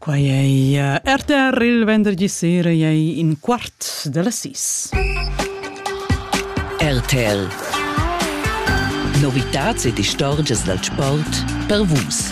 Quai ei eh, RTR il vendergi sera ei in quart della sis. RTL Novitats ed istorgias dal sport per vus.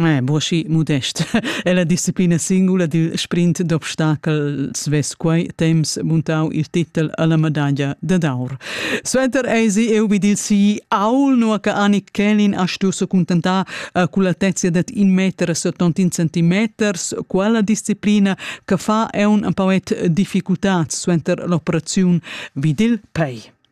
Eh, broschi modest. è la disciplina singula dil sprint d'obstacel svess quei temps montau il titel alla medaglia da d'aur. Suenter eisi eu vid il si aul no che Annik Kelin ha stuso contentar uh, con l'altezia dat in meter settantin centimeters quella disciplina che fa è un un pauet difficultà suenter l'operazione vid il pei.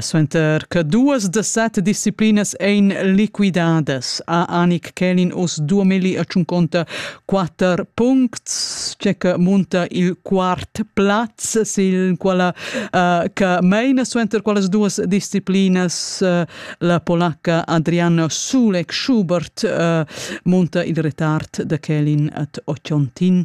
Suenter che duas da set disciplinas ein liquidadas ha Anik Kälin oz duamilli e tschunconta quater puncts, tge che munta il quart plaz, sil quala uh, che meina suenter quellas duas disciplinas uh, la polacca Adriana Sulek Schubert uh, munta il retard da Kälin at Ochontin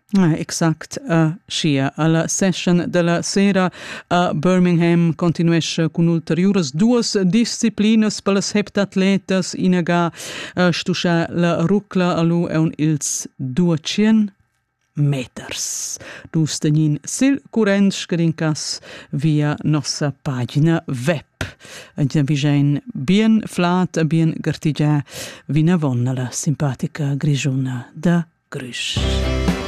Ah, exact, a Schia. Alla session della sera a Birmingham continuesce con ulteriuras duas disciplinas per las heptatletas inaga a stuscha la rucla alu eun ils 200 meters. Dus tenin sil current scarincas via nossa pagina web. Ina vigein bien flat e bien gartigia vinavon alla simpatica grigiuna da Grysch.